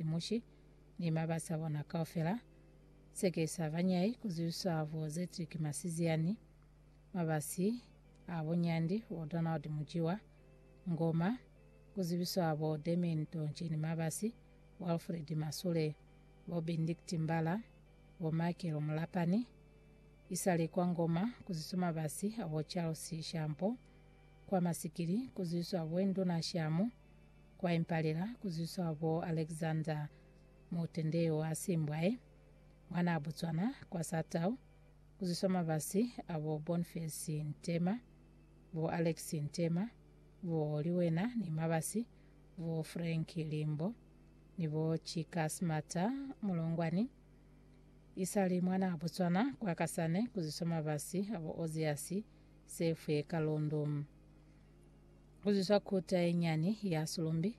Mushi ni mabasi abona kaufela, seke sa banyai kuzwiswa bo Zetrick Masiziani, mabasi a bo Nyandi bo Donald Mujiwa, Ngoma, kuzwiswa bo Damian Tonche ni mabasi bo Alfred Masule, bo Bendict Mbala, bo Michael Mulapani, isale kwa Ngoma kuzwiswa mabasi abo Charles Shampo, kwa Masikili kuzwiswa bo Induna Shamu, Kwa impalela ku zwiswa bo Alexander Mutendeo wa Simbwae, mwanaa Botswana, kwa Satau, ku zwiswa mabasi a bo Bonface Ntema, bo Alex Ntema, bo Liwena ni mabasi, bo Frank Limbo, ni bo Chika Smata Mulongwani. Isali mwanaa Botswana, kwa Kasane, ku zwiswa mabasi a bo Oziasi Sefwe Kalundu. Kuzwiswa kota yenyani ya sulumbi,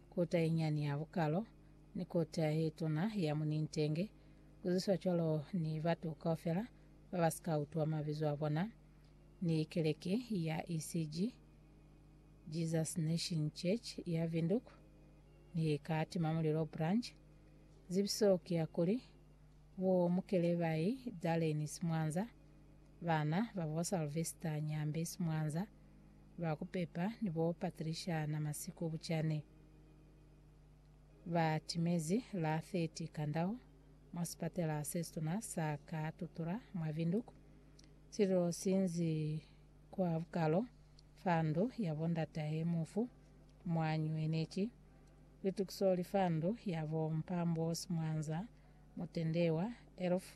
kota yenyani ya bukalo, ni kota yetuna ya munintenge, kuzwiswa cwalo ni batu kaufela babasika utwa mabizo abona, ni keleke ya ECG, Jesus Nation Church, ya Windhoek, ni ka Timamulilo Branch. Zibiso ki ya kuli, Bo Mukelebayi, Darlene Simwanza, Bana ba bo Salvester Nyambi Simwanza, ba ku Pepa ni bo Patricia Namasiku Buchane, ba timezi la 30 Kandau mwa sipatela se situna sa ka Tutura mwa Windhoek, sililo si nzi kwa bukalo fa ndu ya bo ndatahe mufu mwa nyueneki. Litukiso li fa ndu ya bo Mpambo Simwanza, mutendewa, elf.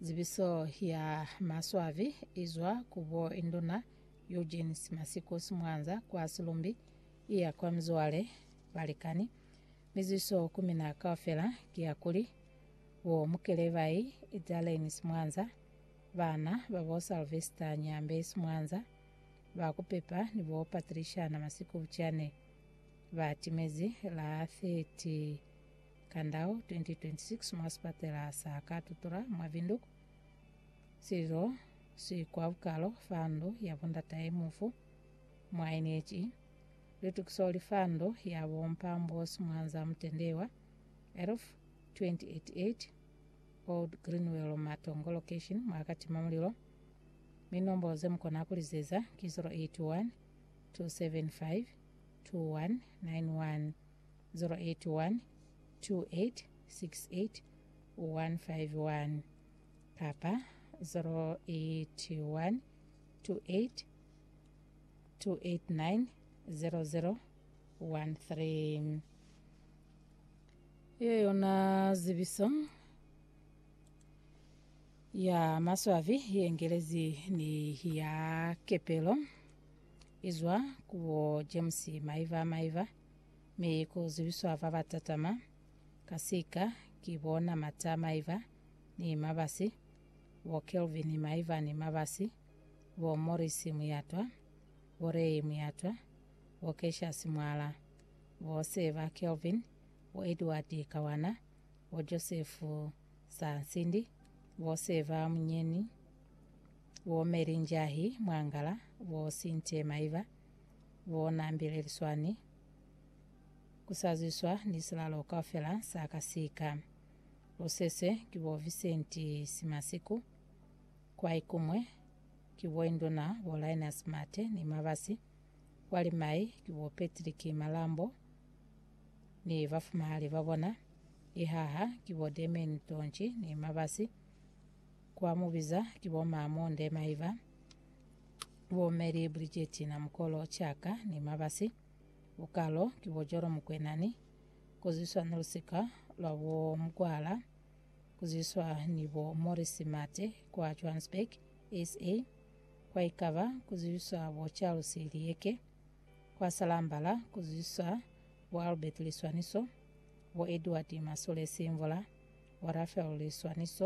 Zibiso ya maswabi izwa ku bo Induna Eugene Simasikus Mwanza kwa Silumbi iya kwa mizwale, balikani, mi ziso ku mina kaufela ki ya kuli, bo Mukelebai Idzaleni Simwanza, bana ba bo Salvester Nyambe Simwanza, ba kupepa ni bo Patriciana Masikubuchane ba timezi la 30 Kandao 2026 mwa sipatela sa Katutura mwa Windhoek, Cyril Sikwaukalo fa ndu ya bo ndatahe mufu mwa NHE, Lutukiso li fa ndu ya bo Mpambosi Mwanza Mutendewa, Elf, 2088, Old Greenwell Matongo Location mwa Katima Mulilo, mi nombolo ze mu kona ku lizeza ki 081 275 2191. 0812868151 kapa 081282890013. Yeo yona zibiso ya maswabi ye ngelezi ni ya kepelo izwa ku bo James Maiva Maiva. Mi ku zibiswa ba ba tatama, ka sika, ki bo na Mata maiba ni mabasi, bo Kelvin maiba ni mabasi, bo Morris muyatwa, bo Ray muyatwa, bo Cassius mwala, bo Seba Kelvin, bo Edward kawana, bo Joseph sa nsindi, bo Seba munyeni, bo Mary Njahi mwangala, bo Cynthia maiba, Bona Mbileliswani, Ku sa zwiswa ni silalo kaufela sa ka sika. Lu seswe ki bo Vincent Simasiku, kwai kumwe ki bo Induna bo Linus Mate ni Mabasi, kwa limai ki bo Patrick Malambo ni bafumahali ba bona, ihaha ki bo Damian Tonchi ni Mabasi, kwa mubiza ki bo Mamu Ndemaiva, Bo Mary Bridget na mukolo Chaka ni Mabasi, bukalo ki bo Jolo Mokwena ni kuziswa ni lusika lwa bo Mkwala kuziswa ni bo Morris Mate kwa Johannesburg, SA. Kwa Ikaba kuziswa bo Charles Liyeke, kwa Salambala kuziswa bo Albert Liswaniso, bo Edward Masole Simvula, bo Raphael Liswaniso,